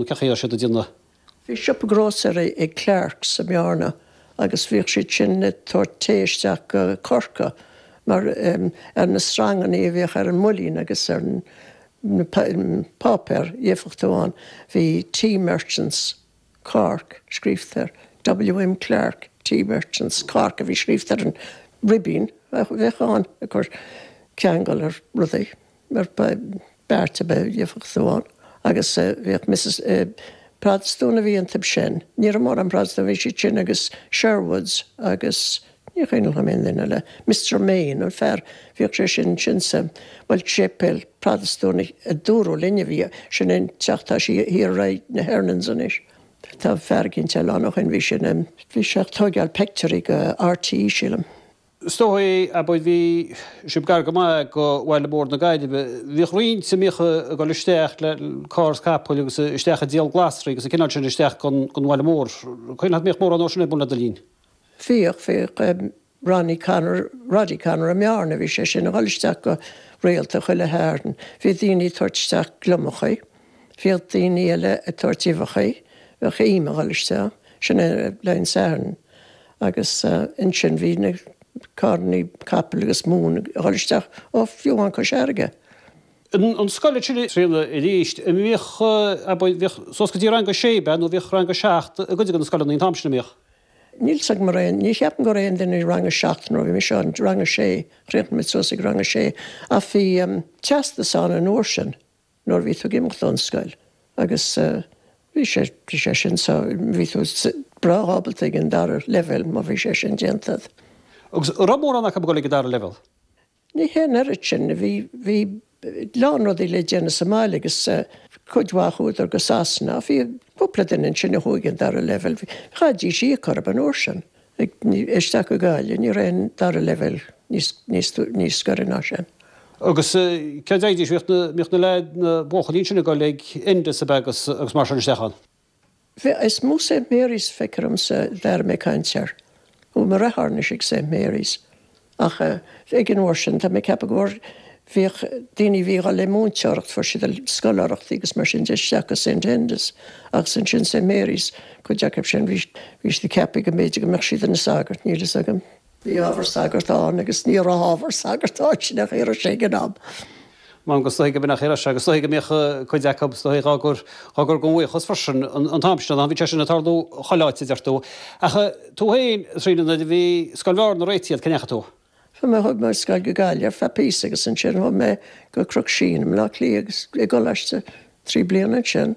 Nó cé chaoi ar siad a d'iarr na. Bhí siopa grósaera ag Clarke's i mBearna agus bhíodh siad sin ag tabhairt tae isteach go Corcaigh mar ar na sreangannaí a bhíodh ar an mbuilín agus ar na páipéir éifeacht amháin bhí Tea Merchants, Cork, scríofa air, WM Clarke, Tea Merchants, Cork a bhí scríofa ar an ribín a bheadh ann ag cur ceangal ar rudaí. ar bheart ar bith éifeacht amháin agus bhíodh Missis Protastúin a bhí iontub sin, ní raibh mórán Protastún, bhí siad sin agus Sherwoods agus ní cuimhneach liom aon duine eile, Mister Main, an fear, bhíodh sé sin, sin sa, bhuel, séipéal Protastúnach a dúradh linn a bhí sin i dteach, tá sé thiar ar aghaidh na Hernons anois, tá fear eicínt eile ann ó shin, bhí sin, bhí sé ag tógáil peictiúirí go RTÉ, sílim. Is dóichí, abair, bhí sibh gar go maith go Bhaile Mór na Gaillimhe. Bhíodh roinnt, an mbíodh, ag dul isteach le carr is capall agus isteach ag díol glasraí agus an cineál sin isteach gon bhaile mór. Cuimhneach an mbíodh mórán dhó sin ar bun le do linn? Bhíodh, bhíodh. Ronnie Connor, Roddy Connor i mBearna, bhí sé sin ag dhul isteach go rialta chuile Shatharn. Bhí daoine ag tabhairt isteach gliomachaí. Bhíodh daoine eile ag tabhairt uibheachaí, bheadh im ag dhul isteach, sin é le an Satharn agus ansin bhí na carrannaí capaill agus móin ag dhul isteach ó fiú amháin Cois Fharraige. An scoil ag filleadh, a Thríona, arís, bhíodh, abair, bhíodh suas go dtí rang a sé ab ea nó bhíodh rang a seacht i gcuid de na scoileanna an t-am sin, an mbíodh? Níl 's agam araon, ní cheapaim go raibh aon duine ag rang a seacht nuair a bhí mise ann, rang a sé, chríochnaigh muid suas ag rang a sé ach bhí teastas ann an uair sin. nuair a bhí tú ag imeacht ón scoil agus bhí sé, bhí sé sin so, bhí tú breá ábalta ag an dara leibhéal má bhí sé sin déanta agat. Agus an raibh mórán acu ag dul ag an dara leibhéal? Ní hé an oiread sin, bhí, bhí a lán rudaí le déanamh sa mbaile agus cuid mhaith chuadar go Sasana ach bhí cúpla duine ansin a chuaigh ag an dara leibhéal, chaithfidís íoc orthu an uair sin. Ag isteach go Gaillimh ní raibh an dara leibhéal níos gaire ná sin. Agus cé a dtéidís? Bhíodh na leaids, na buachaillí ansin ag dul ag Enda's ab ea agus mar sin isteach ann. Bhuel is mó Saint Marys feictear dhomsa a d'airigh mé caint air. Chuaigh mo dheartháir anois ag Saint Marys? Ach ag an uair sin, tá mé ag ceapadh go bhfuair, bhíodh daoine a bhí dhul le múinteoireacht, fuair siad scoláireachtaí agus mar sin de isteach go St Enda's agus ansin St Mary's, cuid acu sin, bhí, bhí siad ag ceapadh go mb'fhéidir go mbeadh siad ina sagairt, níl fhios agam. Bhí ábhar sagart ann agus ní raibh ábhar sagart ann, sin é an chaoi a raibh sé ag an am. M'anam go is dóichí go mb'in é an chaoi a raibh sé agus is dóichí go mbíodh cuid acu, is dóichí dhá gcur, dhá gcur dhá mbuíochas freisin an t-am sin, bhí sé sin ag tarlú chuile áit, a deir tú. Ach tú féin, a Thríona, nuair a bhí scoil Bhearna réitithe a'd, cé ndeachaigh tú? Chuaigh mé, chuaigh mé ar scoil go Gaillimh ar feadh píosa agus ansin chuaigh mé go Cnoc Síon i mBleá Cliath agus i gcoláiste trí bliana ansin.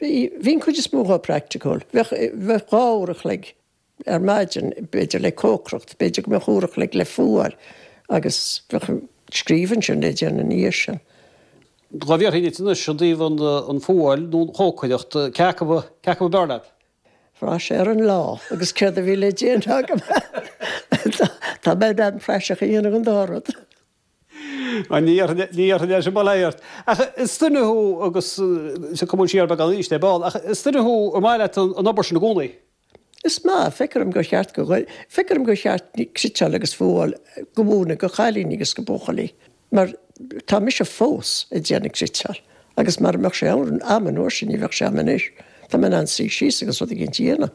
Bhí, bhí an chuid is mó dhe praiticiúil. Bheadh, bheadh dhá uair an chloig ar maidin b'fhéidir le cócaireacht, b'fhéidir go mbeadh uair an chloig le fuáil agus bheadh scríobh ansin le déanamh ina dhiaidh sin. Dhá bhfiafróinn dhíot anois i dtaobh an fuáil nó an chócaireacht, cé acu a, cé acu ab fhearr leat? Bhraith sé ar an lá agus céard a bhí le déanamh agam. Tá, tá mé in ann praiseach a dhéanamh den dá rud. An ndéarfainn leis an mbaile ort? Ach is duine thú agus, sea, cuma siar beagán aníos de, ball, ach is duine thú ar maith leat an obair sin i gcónaí. Is maith. Feictear dom gur cheart go, feictear dom gur cheart cniteáil agus fuáil a mhúineadh do chailíní agus do bhuachaillí mar tá mise fós ag déanamh cniteáil agus mara mbeadh sé agam an uair sin ní bheadh sé a'm anois. Tá mé in ann suí síos agus rud éigint a dhéanamh.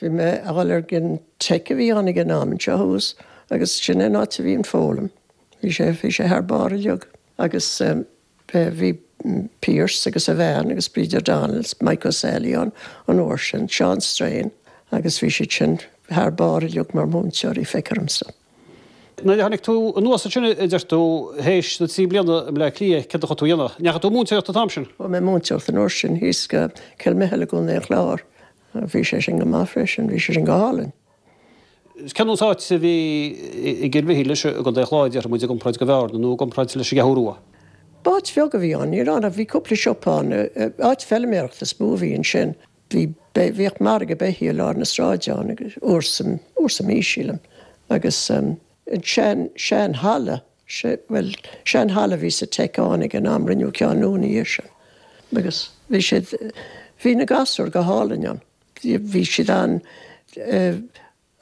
Bhí mé a' dhul ag an teic a bhí ann ag an am, anseo thuas, agus sin é an áit a bhí an foghlaim. Bhí sé, bhí sé thar barr uilig. Agus eh, bhí Pearse agus a bhean agus Bid O'Donnell is Mike O'Sally ann an uair sin, Seán Strain, agus bhí siad sin thar barr uilig mar mhúinteoirí, feictear dhomsa. Nuair a tháinig tú anuas ansin a deir tú, théis na trí bliana i mBleá Cliath, céard a chuaigh tú a dhéanamh? Ndeachaigh tú ag múinteoireacht an t-am sin? Chuaigh mé ag múinteoireacht an uair sin thíos i gCill Mhichíl i gContae an Chláir, Bhí sé sin go maith freisin, bhí sé sin go hálainn. Cén sórt áit a bhí i gCill Mhichíl leis, i gContae Chláir, déarfaidh muid, i gcomparáid le Bearna nó i gcomparáid leis an gCeathrú Rua. B'áit bheag a bhí ann, níl ann ach bhí cúpla siopa ann, áit feiliméarachta is mó a bhí ansin. Bhí, bhíodh margadh beithígh i lár na sráide ann, uair sa, uair sa mhí, sílim, agus. an sean, sean halla, sé, bhuel, sean halla a bhí sa Tech ann ag an am, rinneadh ceann nua ina dhiaidh sin agus bhí siad, bhí na gasúir go hálainn ann, bhí siad an,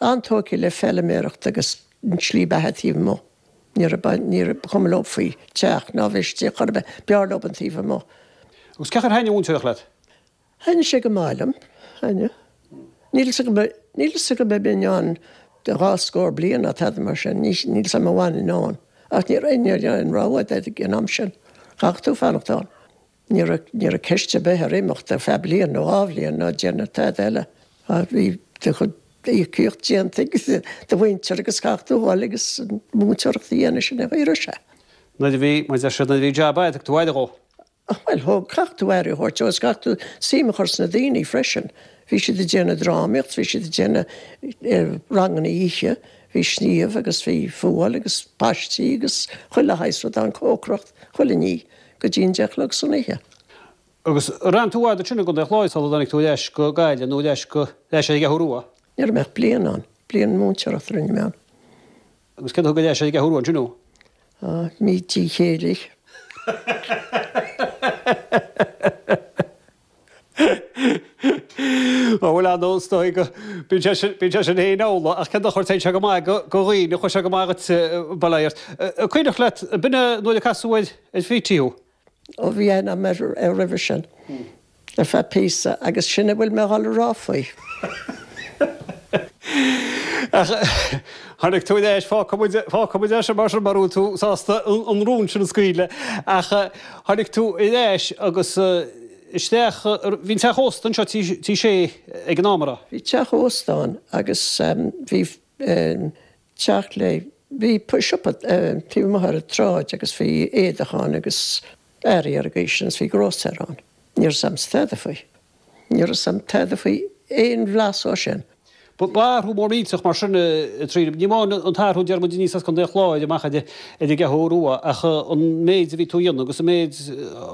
an-tógtha le feiliméaracht agus an tslí bheatha taobh amuigh, ní raibh, ní raibh, ba chuma leo faoi teach ná bheith istigh chor ar bith, b'fhearr leo an taobh amuigh. Agus cén chaoi ar thaitnigh an mhúinteoireacht leat? Thaitin sé go maith liom, aye. Níl 'fhios agam, níl 'fhios agam an mbeinn ann go dhá scór bliain nó tada mar sin, níl 'fhios a'm a bhfanfainn ann, ach ní raibh aon, aon rogha a'd ag an am sin, chaithfeadh tú fanacht ann. Ní raibh, ní raibh ceist a' bith ar imeacht ar feadh bliain nó dhá bhliain nó déanamh tada eile, ach bhí do chuid íocaíocht déanta ag do mhuintir agus chaithfeadh tú a dhul agus an mhúinteoireacht a dhéanamh, sin é an chaoi a raibh sé. Nuair a bhí, mar a deir siad, nuair a bhí jab a'd, thugadh tú aire dhó. Ach bhuel, thóg, chaithfeadh tú aire a thabhairt dó is chaithfeadh tú suim a chur sna daoine freisin. Bhí siad ag déanamh drámaíocht, bhí siad ag déanamh ranganna oíche, bhí sníomh agus bhí fuáil agus páistí agus chuile shaghas rud ann, cócaireacht, chuile ní, go dtí an deich a chlog san oíche. Sea, agus ar fhan tú i bhfad ansin i gContae an Chláir sula dtáinig tú ar ais go Gaillimh nó ar ais go, ar ais ar an gCeathrú Rua? Ní raibh mé ach bliain ann, bliain múinteoireachta a rinne mé ann. Agus cé a thug go deas ar an gCeathrú Rua ansin thú? Ó, mo chéile. Ó, bhuel, ar ndóigh, is dóigh go mbíonn sé sin féin amhlaidh, ach cén dochar, téann sé go maith do dhaoine, chuaigh sé go maith dhuit, ba léir. An cuimhneach leat an uair a casadh ar Petey thú? ó bhí aithne agam air roimhe sin, le feadh píosa, agus sin a bhfuil mé a dhul a rá faoi. Ach tháinig tú aníos, fágfaidh muid, fágfaidh muid é sin mar sin, mura bhfuil tú sásta an rún sin a scaoileadh, ach tháinig tú aníos agus isteach, bhí an teach ósta anseo, Tí Shé, ag an am, a raibh? Bhí teach ósta ann agus bhí. deoch le. siopa taobh amuigh ar an tsráid agus bhí éadach ann agus earraí ar an gcaoi sin agus bhí grósaera ann. Ní raibh a fhios a'm tada faoi. Ní raibh a fhios a'm tada faoi aon bhlas dhó sin. Ba athrú mór millteach mar sin a Thríona. Ní amháin an t-athrú a deir muid aníos as Contae an Chláir amach ar an gCeathrú Rua ach an méid a bhí tú a dhéanamh agus an méid,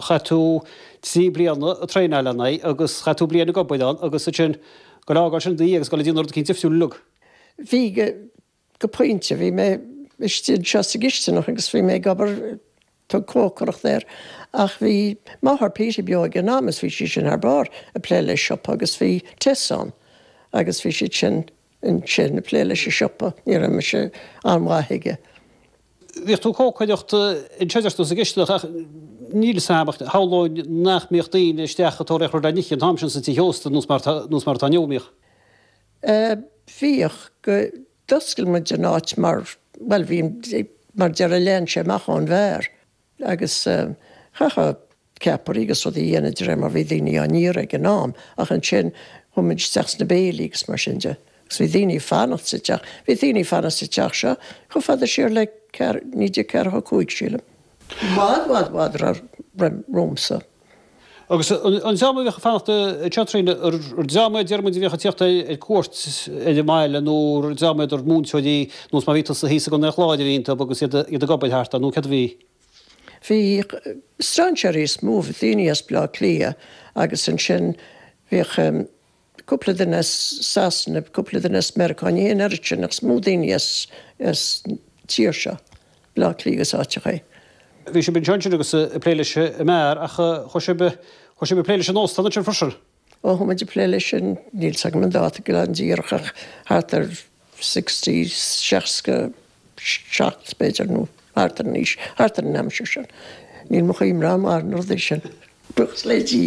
chaith tú trí bliana ag traenáil agus chaith tú bliain ag obair ann agus ansin ag fhágáil sin ina dhiaidh agus ag dul ag déanamh rud éicint difriúil uilig. Bhí, go pointe. Bhí mé istigh anseo sa gcistineach agus bhí mé ag obair, tug cócaireacht air, ach bhí máthair Petey beo ag an am is bhí sí sin thar barr ag plé le siopa agus bhí Tess ann agus bhí siad sin ansin ag plé leis an siopa, ní raibh mise an-mhaith aige. Bhíodh tú ag cócaireacht anseo, dúirt tú, sa gcistineach ach níl 'fhios a'm ach shamhlóinn nach mbíodh daoine isteach ag tóraíocht rud le n-ithe an t-am sin sna tithe ósta, nós mar atá inniu, an mbíodh? Bhíodh. go, d'oscail muid an áit mar, bhuel, bhí, mar deireadh lean sé amach ón mbeár agus chaithfeá ceapairí agus rudaí a dhéanamh de réir mar bhí daoine á n-iarraidh ag an am ach ansin chuaigh muid isteach sna béilí agus mar sin de agus bhí daoine ag fanacht sa teach, bhí daoine ag fanacht sa teach seo chomh fada siar le 1945 sílim, i bhfad, bhfad, bhfad roimh, roimh, romhamsa. Agus an dream a bhíodh ag fanacht sa teach, a Thríona, ar dream a a deir muid a bhíodh ag tíocht ar cuairt ar an mbaile nó ar dream a deir muid múinteoirí ar nós mar a bhí tusa thíos i gContae an Chláir a bhí iontub agus iad ag obair thart nó céard a bhí? Bhí strainséirí is mó, daoine as Baile Átha Cliath agus ansin bhíodh. cúpla duine as Sasana, cúpla duine as Meiriceá, ní haon oiread sin, ach is mó daoine as an tír seo, Baile Átha Cliath agus áiteacha. Bhí sibh anseo ansin agus ag plé leis an mbeár, ach chuaigh sibh ag plé leis an óstán ansin freisin? Ó, chuaigh muid ag plé leis sin, níl 's agam an dáta go díreach ach thart ar sixty, seasca seacht b'fhéidir nó thart ar an aois, thart ar an aimsir sin. Níl mo chuimhne rómhaith ar na rudaí sin, buíochas le Dia.